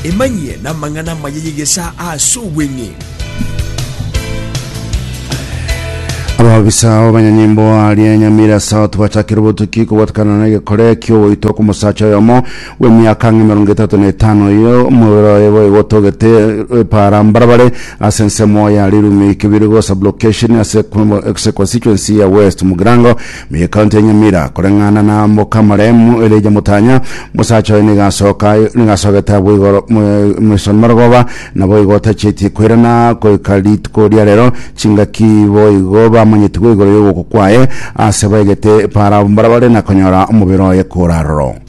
Emanyie namang'ana amaya y'egesa ase obweng'e. ababisa abanyanyimbo aria nyamira south bachakire obotuki kobwatakana na egekore ki'ogoitwa kw'omosacha oyomo bw'emiaka ang'e emerongo etato na etano oyo omobere oye boigo otogete epaara mbarabare ase ensemo ya Rirumi Kibirigo Sublocation ase ase constituency ya West Mugirango muna ekaunti ya Nyamira koreng'ana na Mokamaremu Elijah Mutanya mosacha oye nigo asoka nigo asogete abwo igoro Mason Marogoba naboigo otachieti koirana goika rituko riarero chingaki boigo bamanyetigwe igoro y'ogokwa kwaye ase baigete epaara mbarabare na konyora omobere oye kora aroro.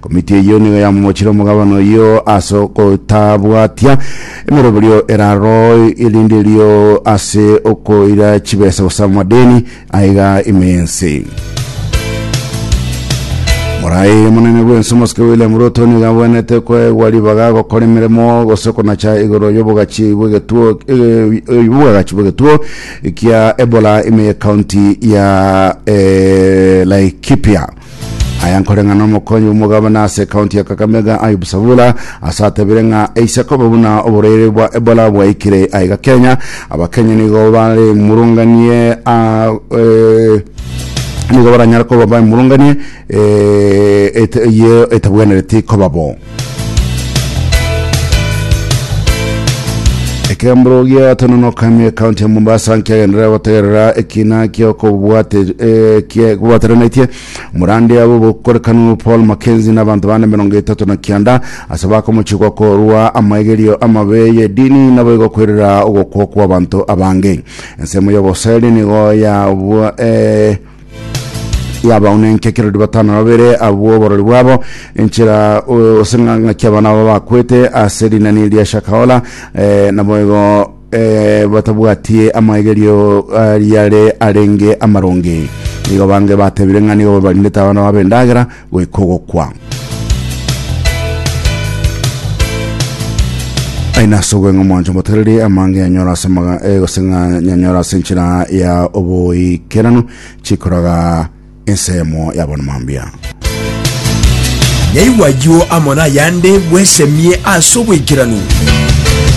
Komiti eyio nigo yamomochire omogabane oyio ase ogotabwatia emeroberio eraro erenderio ase okoira chibesa gose amadeni aiga ime y'ense. Morae omonene bw'ense omosike William Ruto nigo abwenerete koegwa ribaga gokora emeremo gose konacha igoro y'obogachi bw'egetuo eh, y'obwagachi bw'egetuo kia Ebola ime y'ekaunti ya eh, Laikipia. Aya nkore ng'a nomokonyi bw'omogabana ase ekaunti ya Kakamega Ayub Savula ase atebire ng'a eise kobe buna oborwaire bwa Ebola bwaikire aiga Kenya, Abakenya nigo bare murunganie a eh, nigo baranyare koba bamurunganie eh, et- ye etabwenereti koba bo. Ekemburo gia Tononokami ekaunti ya Mombasa nkiagenderera gotegerera ekina kia okobwate- eh, kia- kobwateranaitie morande abo bokorekanu Paul Mackenzie na abanto bane emerongo etato na kianda ase bakomochigwa korwa amaigerio amabe y'edini naboigo koirera ogokwa kw'abanto abange. Ensemo y'oboseri nigo yabwa eh, yabao nenki ekero ndi batano na babere abwo oborori bwabo enchera o- ase ng'a- ng'aki abana abo bakwete ase rinani eri ria shakahola eh, naboigo eh, batabwatie amaegerio ariare arenge amaronge igo bange batebire ng'a nigo babarindete abana babo endagera goika ogokwa. aina ase obweng'e mwancho motereri amange yanyora ase maga eh, gose ng'a yanyora ase enchera ya oboikeranu chikoraga ensemo yabona mambia yaigwa ayio amo nayande bwesemie ase oboikeranu